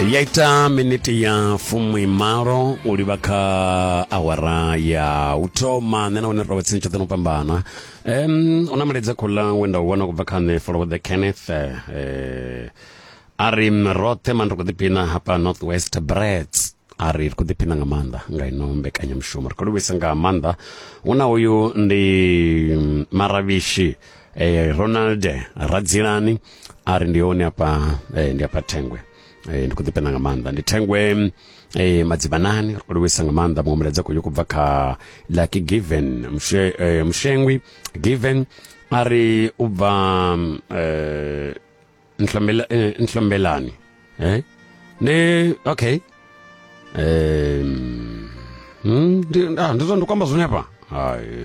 ya ita miniti ya fumi malo u livha kha awara ya u thoma nṋe na wone ro tsini tshoṱhe no fhambana um u na mulaedza khola we nda u wana kubva kha nṋe follow the kenneth eh, a ri roṱhe mani ri khou ḓiphina hafha north west brets a ri ri khou ḓiphina nga maanḓa nga ino mbekanyamushumo ri khou livhisa nga maanḓa hu na uyu ndi mm, maravhishi e, ronald radzilani a ri ndi hone afha e, ndi afha thengwe e, ndi khou ḓipenda nga maanḓa ndi thengwe e, madzibanani ri khou livhuisa nga maanḓa muṅwe mulaedza khou kubva kha lucky given Mshe, e, mushengwi given a ri u bva e, Nhlombela- e, nhlombelani e? ne okay um, ndi ah, ndi zwa- ndi kwamba zwone hafha Hai.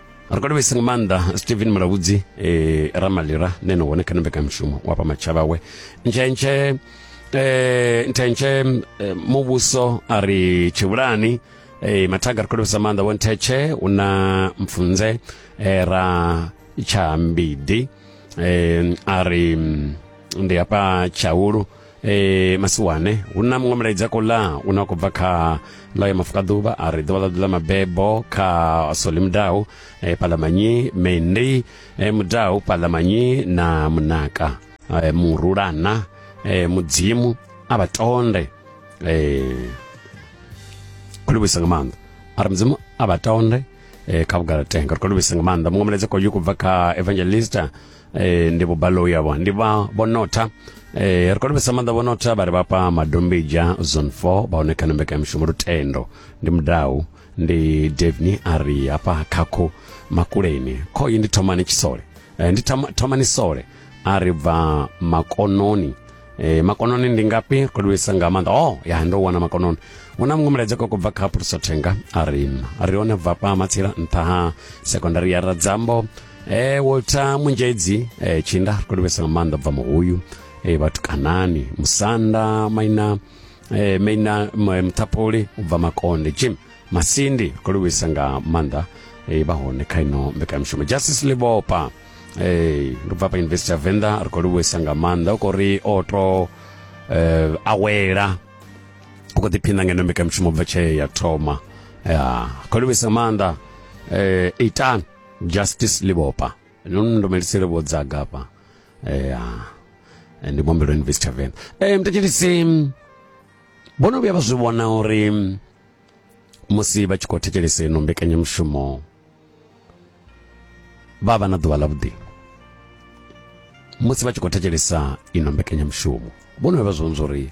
ri khou livhisa nga maanḓa stephen mulabudzi eh, ramalira ne no hone kha ni mbekanyamushumo wa pa matshava we ntshentshe eh, ntshentshe eh, muvhuso a ri tshivhulani eh, mathaga ri khou livhisa maanḓa vho nthetshe u na mpfunze eh, ra tsha mbidi eh, a ri mm, ndi hafha tshaulu e masiwane hu na muṅwe mulaedza ko la u ne wa khou bva kha ḽa ya mafuka ḓuvha a ri ḓuvha ḽa ḓu ḽa mabebo kha soli mudau e palamanyi mendi e mudau palamanyi na munaka e murulana e mudzimu a vha tonde e khou livhuisa nga maanḓa a ri mudzimu a vha tonde e kha vhugalatenga ri khou livhuisa nga maanḓa muṅwe mulaedza ko yu kubva kha evangelista e, ndi vhubalo yavho ndi vha vhonotha e, ri konopesa maanḓa vhonotha vha ri vhafha madombija zone 4 vha hone kha mbekanyamishumo lutendo ndi mudau ndi devni a ri hafha khakho makuleni khoyi ndi thomani tshisole e, ndi thoma- thomani sole a ri bva makononi e, makononi ndi ngafhi ri kodovhesa nga maanḓa o ya ndo wana makononi hu na muṅwe mulaedza koko bva kha phulusothenga a ri a ri one bva pa matsila nṱha ha sekondari ya radzambo e walter munjedzi e, tshinda ri khou livhesa nga maanḓa bva muhuyu e, vhatukanani musanda maina e, maina muthapoli u bva makonde jim masindi ri khou livhesa nga maanḓa e, vha hone kha ino mbekanyamushumo justice libopa e, ri bva pa university ya venḓa ri khou livhesa nga maanḓa u khou ri o to e, awela u khou ḓiphina ngeno mbekanyamushumo bva tshee ya thoma ya khou livhesa nga maanḓa e, itani justice libopa no ndomelisele vho dzaga hafha ya eh, ndi mombelo invest tavern um eh, mtetshedisi vho no vhuya vha zwi vhona uri musi vha tshi khou thetshelesa ino mbekanyamushumo vha vha na ḓuvha ḽavhuḓi musi vha tshi khou thetshelesa ino mbekanyamushumo vho no vha vha zwi vhona uri